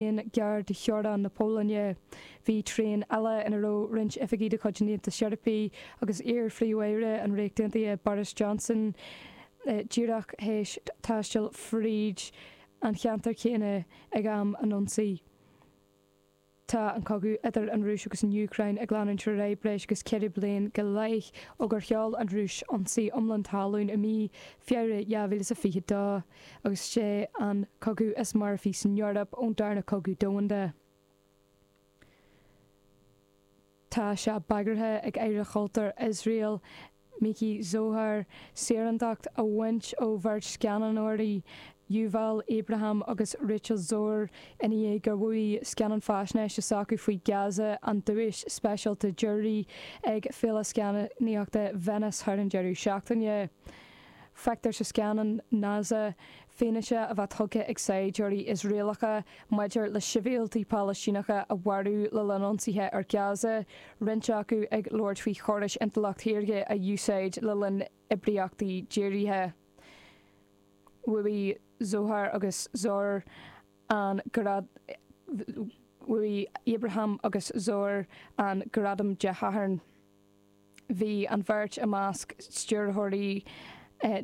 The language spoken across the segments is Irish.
beagán gearr de theorainn na Pólainne. Bhí traein eile ina raibh roinnt oifigí de chuid an Aontais Eorpaigh agus iar-phríomh-aire an Ríocht Aontaithe Boris Johnson díreach théis taisteal fríd an cheantar céanna ag am an ionsaí. Tá an cogadh idir an Rúis agus an Úcráin ag leanúint ar aghaidh breis agus ceithre bliana go leith ó gur sheol an Rúis ionsaí iomlán talún i mí Feabhra 2022. agus sé an cogadh is marfaí san Eoraip ón darna cogadh domhanda. Tá sé bagartha ag Aire Chultúr Iosrael, Miki Zohar, saorándacht a bhaint ó bheirt scannánóirí, Yuval Abraham agus Rachel Szor, ina dhiaidh gur bhuaigh scannán faisnéise s'acu faoi Gaza an duais speisialta Jury ag Féile Scannánaíochta Venice thar an deireadh seachtaine. Feictear sa scannán Naza fianaise á tabhairt tugtha ag saighdiúirí Iosraelacha maidir le sibhialtaigh Phalaistíneacha a mharú le linn ionsaithe ar Gaza, roinnt acu ag labhairt faoi chórais intleacht shaorga a úsáid le linn oibríochtaí dírithe. Bhuaigh Zohar agus Szor an Bhuaigh Abraham agus Szor an gradam Dé Sathairn. Bhí an bheirt i measc stiúrthóirí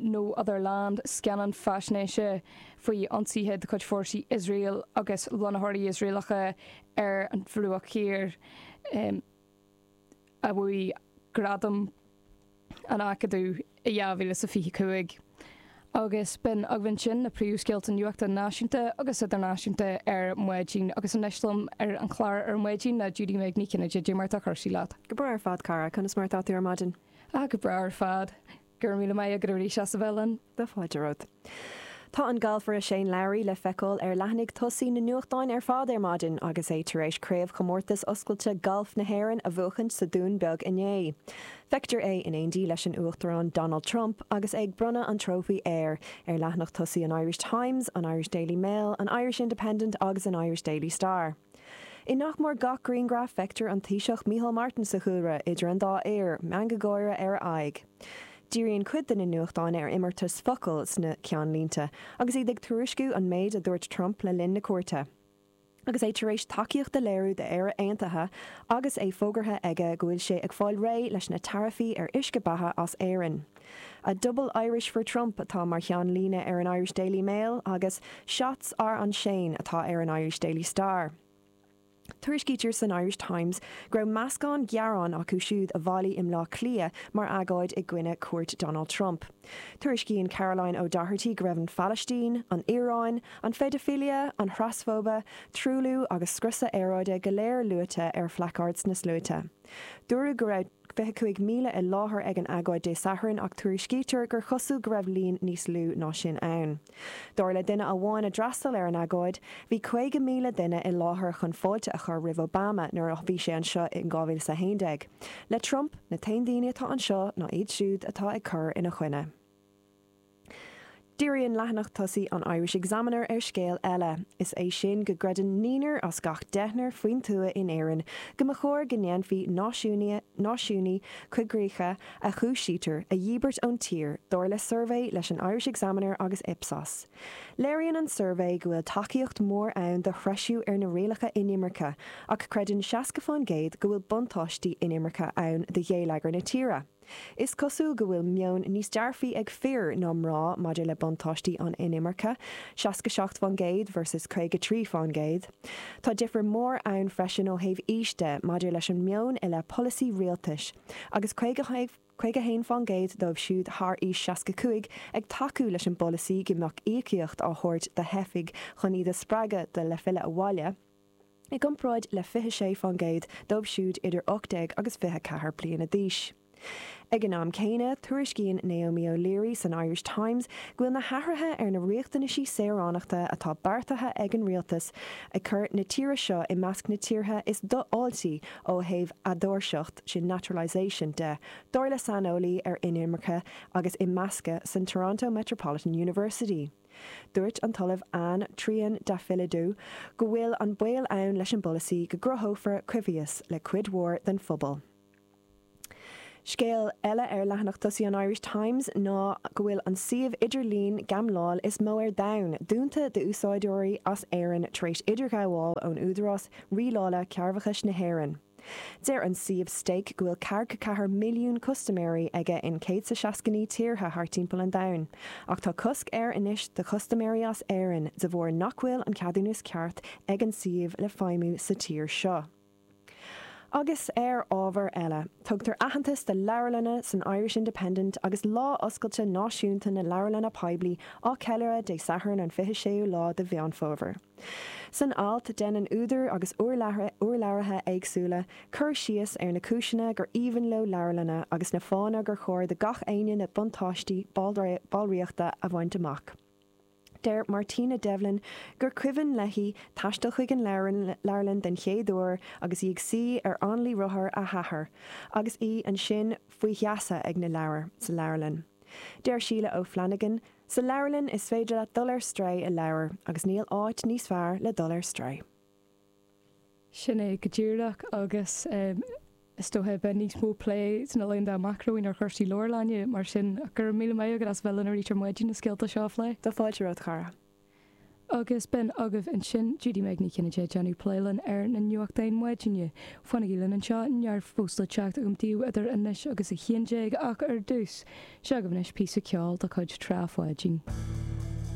No Other Land, scannán faisnéise faoi ionsaithe de chuid fórsaí Iosrael agus lonnaitheoirí Iosraelacha ar an Bhruach Thiar, a bhuaigh Gradam an Acadaimh. i 2025, agus b'in agaibh ansin na príomhscéalta nuachta náisiúnta agus idirnáisiúnta ar maidin agus anois liom ar an chlár ar maidin ná Judy-Meg Ní Chinnéide cad é mar atá cúrsaí leat. Go breá ar fad, cara. Conas mar atá tú ar maidin? Ah, go breá ar fad. Go raibh míle maith agat arís as a bheith linn. Míle fáilte romhat. Tá an galfaire Shane Lowry le feiceáil ar leathanaigh tosaigh na nuachtáin ar fad ar maidin agus é tar éis Craobhchomórtas Oscailte Gailf na hÉireann a bhuachaint sa Dún Beag inné. Feictear é in éindí leis an Uachtarán Donald Trump agus é ag bronnadh an trófaí air ar leathanach tosaigh an Irish Times, an Irish Daily Mail, an Irish Independent agus an Irish Daily Star. I nach mór gach grianghraf feictear an Taoiseach Micheál Martin sa chúlra idir an dá fhear, meangadh gáire ar a aghaidh. Díríonn cuid de na nuachtáin ar imeartas focal sna ceannlínte agus iad ag tuairisciú an méid a dúirt Trump le linn na cuairte agus é tar éis tacaíocht a léiriú d'Éire Aontaithe agus é fógartha aige go bhfuil sé ag fáil réidh leis na taraifí ar uisce beatha as Éirinn. A double Irish for Trump atá mar cheannlíne ar an Irish Daily Mail agus Shots are on Shane atá ar an Irish Daily Star. Tuairiscítear san Irish Times go raibh meascán gearán acu siúd a bhailigh i mBaile Átha Cliath mar agóid i gcoinne cuairt Donald Trump. Tuairiscíonn Caroline O'Doherty go raibh an Phalaistín, an Iaráin, an phéidifilia, an thrasfóibe, truailliú agus scriosadh aeráide go léir luaite ar phlacaird na sluaite. Dúradh go raibh. 25,000 i láthair ag an agóid Dé Sathairn ach tuairiscítear gur chosúil go raibh líon níos lú ná sin ann. Dar le duine amháin a d'fhreastail ar an agóid, bhí 50,000 duine i láthair chun fáilte a chur roimh Obama nuair a bhí sé anseo in 2011. Le Trump, na t-aon daoine atá anseo ná iad siúd atá ag cur ina choinne. Díríonn leathanach tosaigh an Irish Examiner ar scéal eile, is é sin go gcreideann naoinar as gach deichnear faoin tuath in Éirinn go mba chóir go ndéanfaí náisiúnaí coigríche a chúisítear a dhíbirt ón tír, dar le suirbhé leis an Irish Examiner agus Ipsos. Léiríonn an suirbhé go bhfuil tacaíocht mhór ann do threisiú ar na rialacha inimirce ach creideann seasca fán gcéad go bhfuil buntáistí inimirce ann do gheilleagar na tíre. Is cosúil go bhfuil meon níos dearfaí ag fir ná mná maidir le buntáistí an inimirce, seasca seacht fán gcéad versus caoga trí fán gcéad. Tá difear mór ann freisin ó thaobh aois de maidir leis an meon i leith polasaí rialtais, agus caoga haon fán gcéad dóibh siúd thar aois seasca cúig ag tacú leis an bpolasaí go mbeadh íocaíocht á thabhairt do theifigh chun iad a spreagadh le filleadh abhaile. i gcomparáid le 26 fán gcéad dóibh siúd idir 18 agus 24 bliana d'aois. Ag an am céanna, tuairiscíonn Naomi O'Leary san Irish Times go bhfuil na hathruithe ar na riachtanaisí saoránachta atá beartaithe ag an rialtas ag cur na tíre seo i measc na tíortha is dofháiltí ó thaobh eadóirseacht sin naturalisation de, dar le saineolaí ar inimirce agus imeascadh san Toronto Metropolitan University. Dúirt an tOllamh Anna Triandafyllidou go bhfuil an baol ann leis an bpolasaí go gcruthófar coimhthíos le cuid mhór den phobal. Scéal eile ar leathanach tosaigh an Irish Times ná go bhfuil an suíomh idirlín gambláil is mó ar domhan dúnta d'úsáideoirí as Éirinn tar éis idirghabháil ón Údarás Rialála Cearrbhachais na hÉireann. Deir an suíomh Stake go bhfuil ceathracha ceathair milliún custaiméirí aige in 169 tíortha thart timpeall an domhain, ach tá cosc air anois do chustaiméirí as Éirinn de bharr nach bhfuil an ceadúnas ceart ag an suíomh le feidhmiú sa tír seo. Agus ar ábhar eile, tugtar aitheantas do leabharlanna san Irish Independent agus Lá Oscailte Náisiúnta na Leabharlanna Poiblí á cheiliúradh Dé Sathairn an 26ú lá de Mheán Fómhair. San alt, déanann údair agus urlabhraithe éagsúla cur síos ar na cúiseanna gur aoibhinn leo leabharlanna agus na fáthanna gur chóir do gach aoinne na buntáistí ballraíochta a bhaint amach. Deir Martina Devlin gur cuimhin léi taisteal chuig an leabharlann den chéad uair agus í ag suí ar hanlaí rothar a hathar agus í ansin faoi gheasa ag na leabhair sa leabharlann. Deir Sheila O'Flanagan, Sa leabharlann is féidir leat dul ar strae i leabhar agus níl áit níos fearr le dul ar strae. Sin é go díreach agus is dócha beidh níos mó plé sna laethanta amach romhainn ar chúrsaí leabharlainne, mar sin go raibh míle maith agat as bheith linn arís ar maidin leis na scéalta seo a phlé. Tá fáilte romhat, a chara. Agus b'in agaibh ansin Judy-Meg Ní Chinnéide ag déanamh plé linn ar na nuachtáin maidine, Fanaigí linn anseo, neart fós le teacht agam daoibh idir anois agus a haon déag ach ar dtús, seo agaibh anois píosa ceoil de chuid Tráth Pháidín.